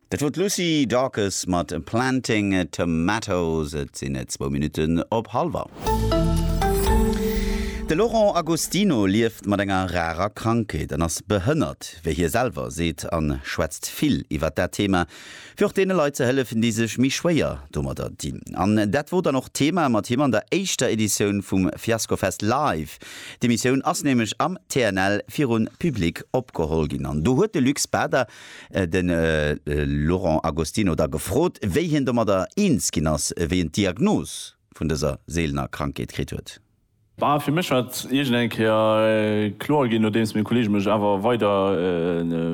Dat wor d'Lucy Dacus mat Planting Tomatoes. Et sinn et zwou Minutten op halwer. De Laurent Agostino lieft mat enger rarer Krankheet an ass behënnert, wéi hie selwer seet, an schwätzt vill iwwert dat Thema, fir och deene Leit ze hëllefen, déi sech méi schwéier domadder dinn. An dat wor dann och d'Thema mat him an der éischter Editioun vum Fiaskofest Live. D'Emissioun ass nämlech am TNL virun Public opgeholl ginn an do huet de Luc Spader de Laurent Agostino da gefrot, wéi hien domadder eens ginn ass, wéi en d'Diagnos vun dëser seelener Krankheet kritt huet. Bah, fir mech war et iergend eng Kéier kloer ginn, nodeems meng Kolleege mech awer weider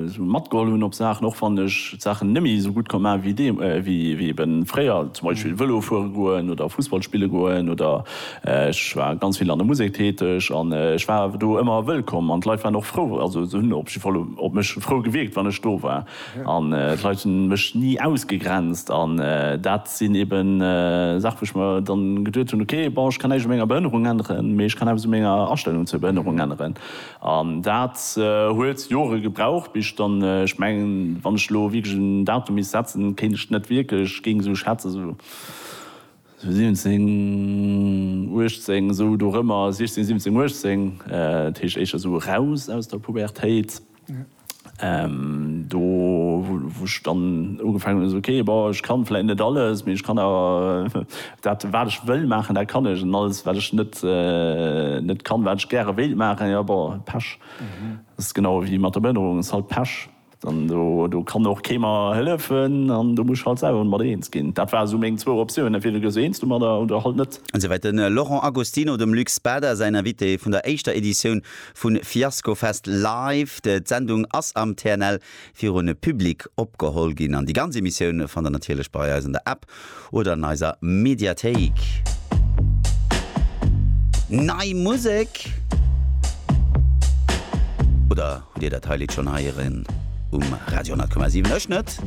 esou matgeholl hunn op Saachen, och wann ech d'Saachen net méi esou gutt konnt maachen wéi deem, wéi ebe fréier, zum Beispill Vëlo fuere goen oder Fussball spille goen, oder ech war ganz vill an der Musek täteg an ech war awer do ëmmer wëllkomm an d'Leit waren och frou, also se hunn op jidde Fall op mech frou gewierkt, wann ech do war. An d'Leit hu mech ni ausgegrenzt. An dat sinn eben Saache wou ech mer dann geduet hunn, ok, bon, ech kann näischt u menger Behënnerung änneren, mee ech kann eppes u menger Astellung zur Behënnerung änneren. An dat huet Jore gebraucht, bis ech dann, ech mengen, wann ech elo wierklech en Datum misst setzen, kéint ech net wierklech, géing esou schätzen, esou 17, 18, esou dorëmmer, 16, 17, 18, dat heescht éischter esou eraus aus der Pubertéit. Do wou ech dann ugefaangen hunn, esou, okay, bon, ech kann vläit net alles, mee ech kann awer dat wat ech wëll maachen, dat kann ech, an alles wat ech net net kann, wat ech gäre wéilt maachen, jo, bon, Pech. Dat ass genau ewéi mat der Behënnerung, ass halt Pech. Dann do do kann och kee mer hëllefen an do muss ech halt selwer mat eens ginn. Dat ware sou meng zwou Optiounen, entweder gëss du eens domadder oder halt net. Esou wäit de Laurent Agostino, dem Luc Spada säin Invité vun der éischter Editioun Vu Fiasco Fest Live, d'Sendung ass am TNL virun Public opgeholl ginn an déi ganz Emissioun fannt der natierlech bei eis an der App oder an eiser Mediathéik. Nei Musek? Oder hutt dir dat hei Lidd schonn heieren um Radio 100,7? Ech net.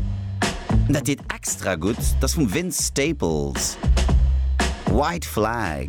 An dat deet extra gutt, dat ass vum Vince Staples, White Flag.